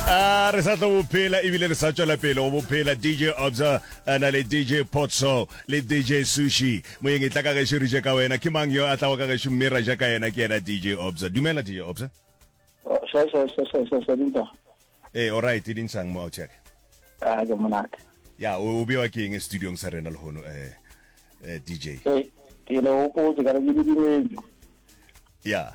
a re sa tlo bophela ebile re sa tšwela pele go bophela dj obza na le dj potso le dj sushi moyeng e tla ka gešo re je ka wena ke mang yo a tlago ka gešo mme ra ja ka yena ke yena dj obza dumela dj obza ee oright e dinsang mo outcheck ah, ya o bewa ke eng studiong sa rena lehono um eh, eh, dj ya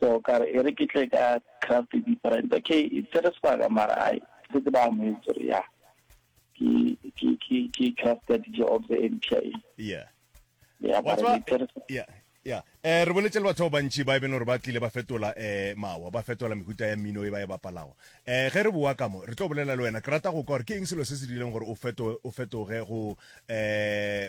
So ka re, e re ke tle ka craft different. Okay, e tsere sebaka mara ai, ke setse ba amohetse gore ya, ke, ke, ke, ke craft ya DJ Obze e mpsha e. Yeah. Yeah, Wa mara tseba, e tsere sebaka. yeah, yeah. Eh, re boletse le batho ba bantši ba e bene gore ba tlile ba fetola eh mawa, ba fetola mehuta ya mmino e ba e bapalago. Eh, ge re boa ka mo, re tlo bolela le wena. Ke rata go kwa gore ke eng selo se se dirileng gore o feto, o fetoge go eh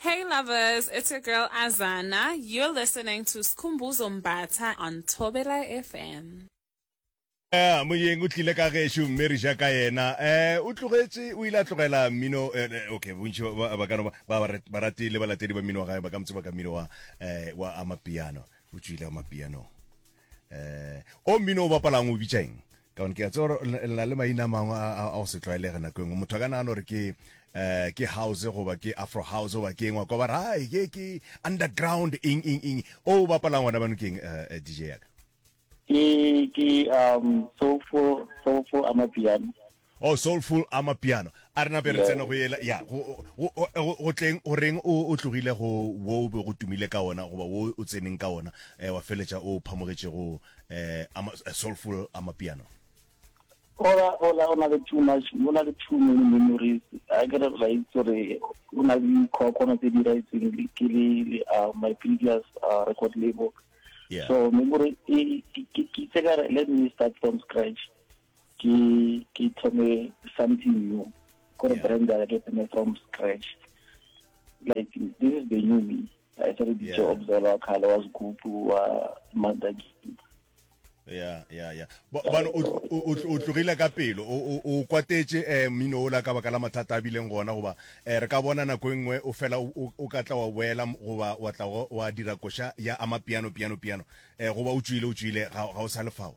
Hey lovers, it's your girl Azana. You're listening to Skhumbuzo Mbatha on Thobela FM. Eh, moyeng o tlile ka gešo mme re ja ka yena um o tlogetše o ile a tlogela mmino eh, eh, okay bontši ba kano barati le balatedi ba mmino wa gae ba ka motse ba ka mmino wa um wa amapiano o tswile amapianong um o mmino o bapalang o bitšaeng ka gone ke a tseba gore le na le maina a mangwe a go se tlwaelege nako engwe motho a ka nagana gore ke um ke house goba ke afro house goba ke engwa kwa ba ra hai ke ke underground eng eng eng o bapalang gona bano keng um eh, eh, dj yaka ke ke um soulful soulful amapiano oh soulful amapiano a re nape re tsena go yela ya go tleng go reng o tlogile go wo o be go tumile ka ona goba wo o tseneng ka ona um wa feletša o phamogetšego eh, ama, a soulful amapiano ola ola o na le too much o na le too many memories a ke re la itse gore o na le dikgwakgwana tse di raetseng ke le uh, my previous uh, record label yeah. so memory ke tse ka re let me start from scratch ke ke thome something new gore yeah. brand ya ke thome from scratch like this is the new me i started yeah. to observe our color was good wa mother ya ya ya bano o tlogile ka pelo o kwatetse um eh, mmino ola ka baka la mathata a bileng gona goba um re ka bona nako e nngwe o fela o ka tla wa boela goba wa tla wa dira koša ya ama piano piano piano um goba o tswile o tswile ga o sa lefao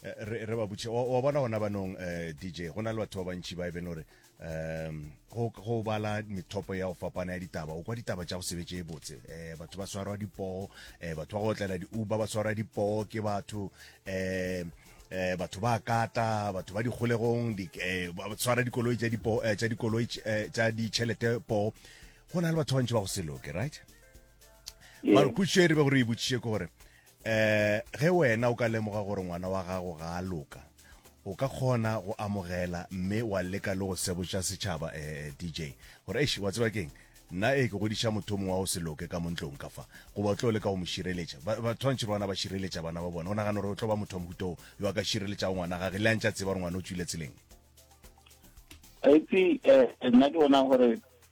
Eh, re re ba butše wa bona gona banong eh, dj go na le batho ba bantšhi ba e bene gore um go bala methopo ya go fapana ya ditaba o kwa ditaba tša go sebetse e botse um batho ba swarwa dipoo um eh, batho ba go otlela di-uber ba swarwa dipoo ke batho um eh batho ba kata batho ba dikgolegong di eh ba tshwara dikoloi tsa dipo eh, tsa dikoloi eh, tsa ditšhelete po go na le batho ba ntse ba go seloke right mara kutšo e re be gore e botšiše ke gore um ge wena o ka lemoga gore ngwana wa gago ga a loka o ka kgona go amogela mme wa leka le go sebotša setšhaba um eh, eh, dj gore eish wa tseba keng nna e ke godiša motho mongwe wa go se loke ka montlong ka fa goba o tlo leka go mo šireletša batshwantšhe ba bona ba šireletša bana ba bona o nagana gore o tlo ba motho wa mohutoo yo a ka šireletšago ngwana gage le a ntša tseba gore ngwana o tswile tseleng aitse um eh, nna ke bona gore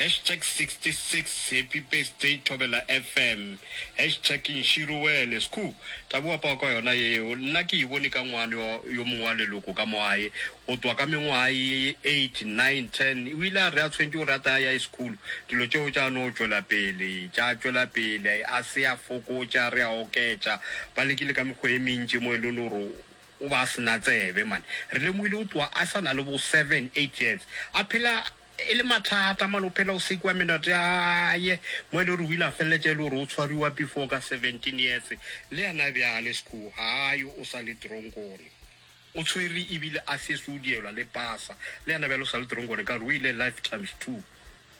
Hashtag 66 Happy birthday Thobela FM Hashtag Nxiruwele Skhuu Tabo apawa ka yona yeo nna ke e bone ka ngwane wa yo mongwe wa leloko ka mo aye go twa ka mengwaga ye 8, 9, 10 o ile a re a tshwentše gore a tla ya sekhulo dilo tšeo tša no tšwela pele tša tšwela pele a se a fokotša re a oketša ba lekile ka mekgwa e mentši mo e leng gore O ba a se na tsebe man. Re lemohile o tloha a sa na le bo seven, eight years. A phela e le mathata man, o phela o sekiwa menoto ya haye. Mo e le gore o ile a feleletša e le gore o tshwariwa before ka seventeen years. Le yena bjale sku ha a yo, o sa le teronkong. O tshwere ebile a sesi o dielwa le pasa. Le yena bjale o sa le teronkong, ka gore o ile life times two.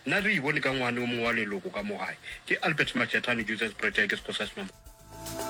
Nna re e bone ka ngwane o mongwe wa leloko ka mo gae. Ke Albert Majetane, Joseph's Project, Sexhosa Senomaphodi.